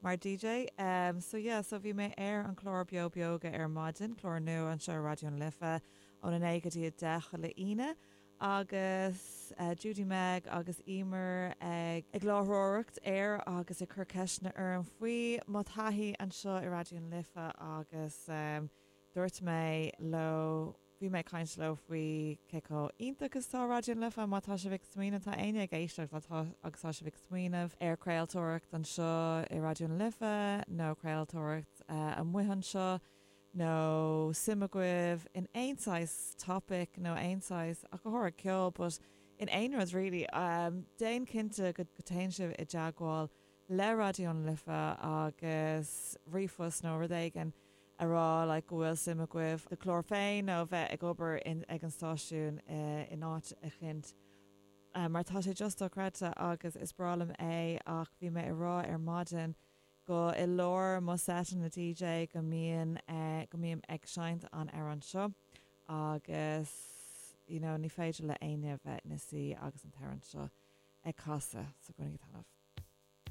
Mar DJ, em, so yeah, so bhí mé ar an chlár Beo Beoga ar maidin, clár nua anseo ar Raidió na Life, óna naoi go dtí a deich chuile Aoine, agus, eh, Judy-Meg agus Eimear ag, ag láithreoireacht air agus ag cur ceisteanna orm faoi mo thaithí anseo i Raidió na Life agus, em, dúirt mé leo, Bhí mé ag caint leo faoi cé chomh iontach is tá Raidió na Life. Má tá sibh ag smaoineamh, má tá éinne ag éisteacht agus tá sibh ag smaoineamh ar chraoltóireacht anseo i Raidió na Life nó craoltóireacht amach anseo nó suim agaibh in aon saghas topic nó aon saghas ach go háirithe ceol but in aon rud really, déan cinnte go téann sibh i dteagmháil le Raidió na Life agus ríomhphost nó rud éigin a rá like go bhfuil suim agaibh do chlár féin nó bheith ag obair ag an stáisiún in áit eicint mar tá sé just dochreidte agus is breá liom é ach bhí mé a rá ar maidin go i lár mo seiteanna DJ go mbíonn go mbím ag seinnt an amhrán seo agus you know ní féidir le éinne bheith ina suí agus an t-amhrán seo ag casadh so Grooving go talamh.